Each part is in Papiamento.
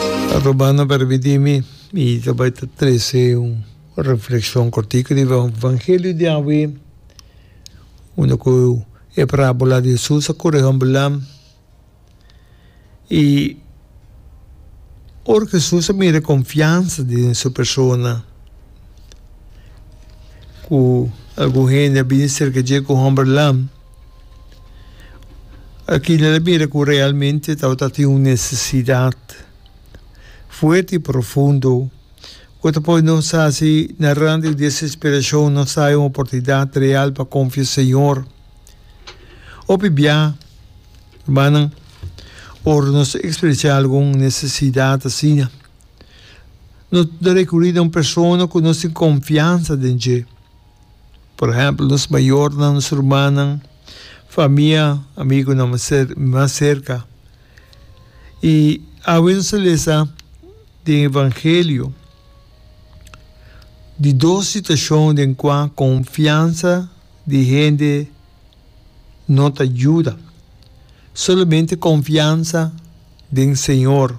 Ta robando permi di mi i ta bai ta trese un reflekshon kortiku riba e Evangelio di awe, unda ku e parabola di Hesus a kore hombernan. I ora ku Hesus a mira e konfiansa di su persona, ku algun hende a bini serka dje ku hombernan. Akila ta bira ku realmente tabata tin un nesesidat fuerte i profundo ku ta pone nos hasi na rand di desesperashon, nos haya un oportunidat real pa konfia Señor. Hopi bia, rumannan, ora nos ta ekspresá algun nesesidat asina, nos ta rekurí na un persona ku nos tin konfiansa den dje. Por ehèmpel, nos mayornan, nos rumannan, famia, amigunan mas serka. I awe nos a lesa den evangelio di dos situashon den kua konfiansa di hende no ta yuda. Solamente konfiansa. den Señor.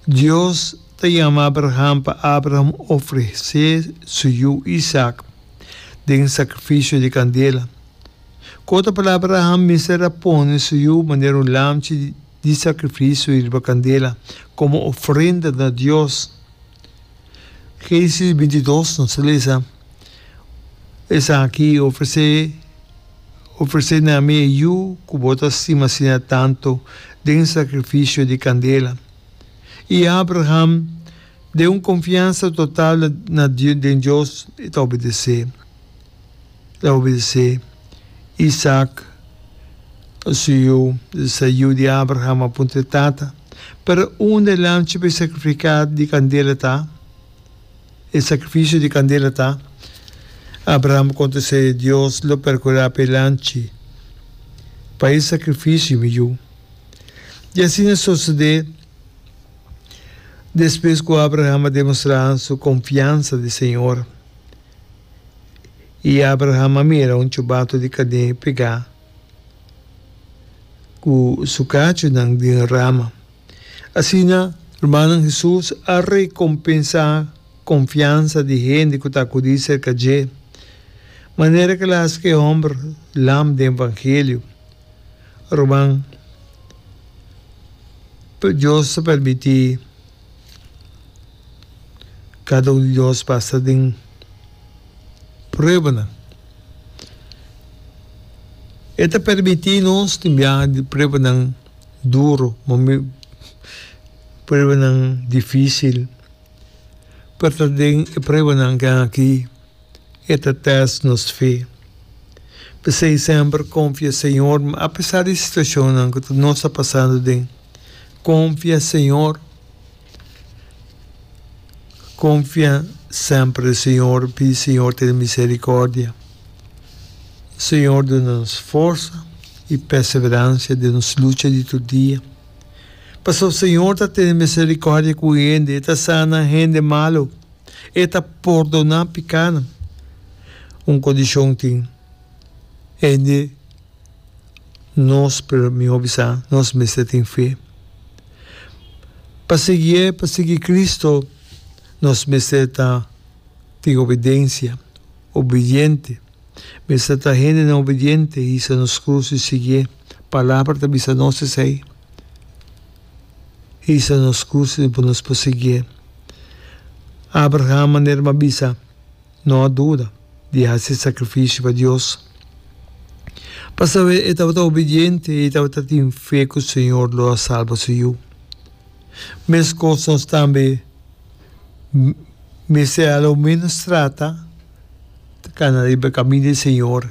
Dios ta yama Abraham pa Abraham ofrecé su yu Isaac den sacrificio di candela. Cu ta palabra Abraham mester a pone su yu manera un lamchi di sacrificio riba candela como ofrenda na Dios? Genesis bintidos nos ta lesa, Esaki ofresé ofresé na mi e yu ku bo ta stima asina tantu den sakrifisio di kandela. I Abraham, den un konfiansa total na den Dios, e ta obedesé. ta obedesé Isaak, su yu, di sa yu di Abraham, a puntra e tata, Pero unda e lamchi pa e sakrifiká di kandela ta? E sakrifisio di kandela ta? Abraham a kontest'é, Dios lo perkurá pa e lamchi, pa e sakrifisio, mi yu. I asina a sosodé, despues ku Abraham a demostrá su konfiansa di Señor. I Abraham a mira un chubatu di kadé pegá ku su kachunan den e rama. Asina rumannan Hesus a rekompensá konfiansa di hende ku ta akudí serka dje, manera ku el a hasi ku e hòmber lam den evangelio. Ruman, Dios ta permití. Kada un di nos pasa den pruebanan. E ta permití nos tin biaha di pruebanan duru, pruebanan difísil, pero ta den e pruebanan aki. e ta test nos fe. P'esei semper konfia Señor, apesar di situashonnan ku nos ta pasando den. Konfia Señor, konfia semper den Señor, pidi Señor tene miserikordia. Señor duna nos forsa i perseveransia den nos lucha di tur dia. Pasobra Señor ta tene miserikordia ku hende, e ta sana hende malu. E ta pordoná pikánan. Un kondishon tin, hende nos, pero mi hopi sa, nos mester tin fe. Pa siguié, pa sigui Cristo, nos mester ta tin obidensia, obidiente. Mester ta hendenan obidiente, hisa nos krus i siguié. Palabra ta bisa nos esei. hisa nos kursi di por nos por siguié. Abraham manera m'a bisa, no a duda di hasi sakrifisio pa Dios, pasobra e tabata obidiente i e tabata tin fe ku Señor lo a salba su yu. Meskos nos tambe. mester a lo menos trata ta cana riba e camin di e Señor,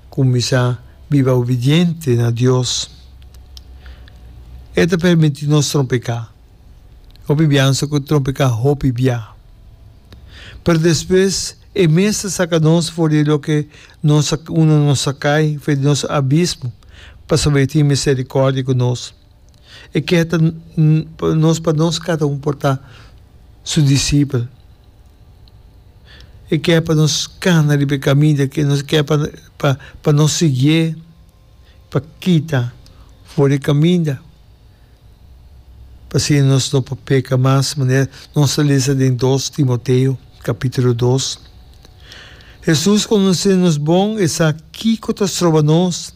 cuminsa biba obediente na Dios. E ta permiti nos trompecá. Hopi biansa cu trompecá hopi bia. Pero despues e mes ta saca nos for di loke nos a, unda nos a cay, for di nos abismo, pa sabi tin misericordia cu nos. E keha ta nos pa nos cata un por ta su discipel. E keha pa nos cana riba e caminda, e keha pa nos siguié, pa kita for e caminda, p'asina nos no por peca mas, manera nos a lesa den dos Timoteo capitulo dos. Hesus conoce nos bon, e sa kico ta stroba nos.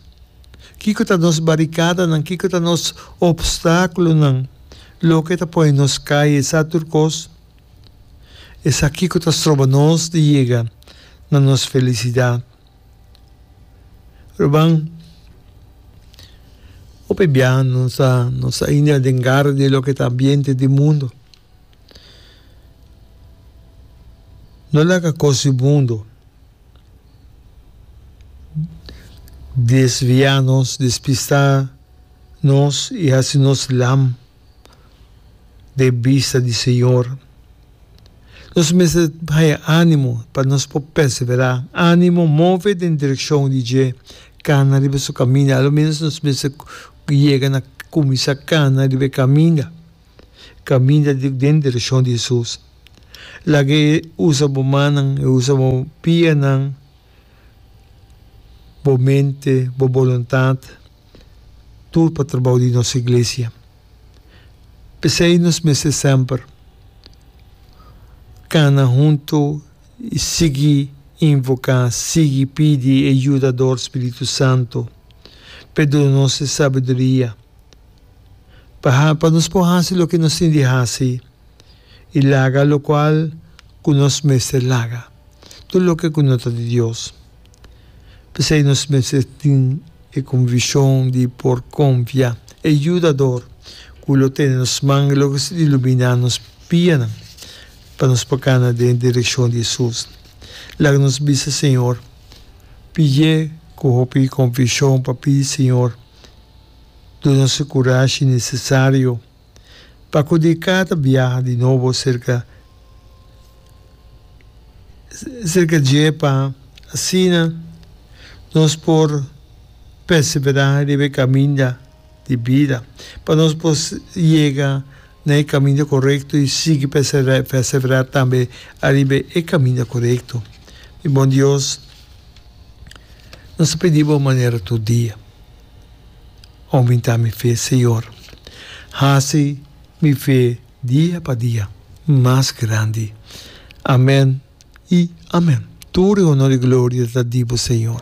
Kiko ta nos barikadanan? Kiko ta nos opstákulonan? Loke ta pone nos kai esaki tur kos? Esaki kiko ta stroba nos di yega na nos felisidat? Ruban, hopi biaha nos ta ainda den garra di loke ta ambiente di mundu. No laga cos di mundo desvia nos, despista nos y haci nos lam den bista di Señor. Nos mester haya animo pa nos por persevera. Animo move den direccion di dje cana riba su caminda. Alomenos nos mester yega na cuminsa cana riba e caminda. Kaminda di den direkshon di Hesus. Laga e usa bo mannan, e usa bo pianan, bo mente, bo boluntat, tur pa trabou di nos iglesia. P'esei nos mester semper kana huntu i sigui invoká, sigui pidi e yudador, Spiritu Santu, p'e duna nos e sabiduria. pa nos por hasi loke nos tin di hasi i laga lokual ku nos mester laga, tur loke ku no ta di Dios. P'esei nos mester tin e konvikshon di por konfia e Yudador ku lo tene nos man i lo ke su iluminá nos bianan pa nos por kana den direkshon di Hesus. Laga nos bisa Señor, p'ie ku hopi konvikshon pa pidi Señor. Duna su kurashi nesesario pa kudí kata biaha di nobo serka serka dje pa asina nos por perseverá riba e kaminda di bida, pa nos por yega na e kaminda korekto i sigui perseverá tambe ariba e kaminda korekto. Mi bon Dios, nos ta pidí bo manera tur dia. Oumenta mi fe, Señor. Haci mi fe dia pa dia mas grandi. Amen y amen. Tur e honor y gloria ta di Bo, Señor.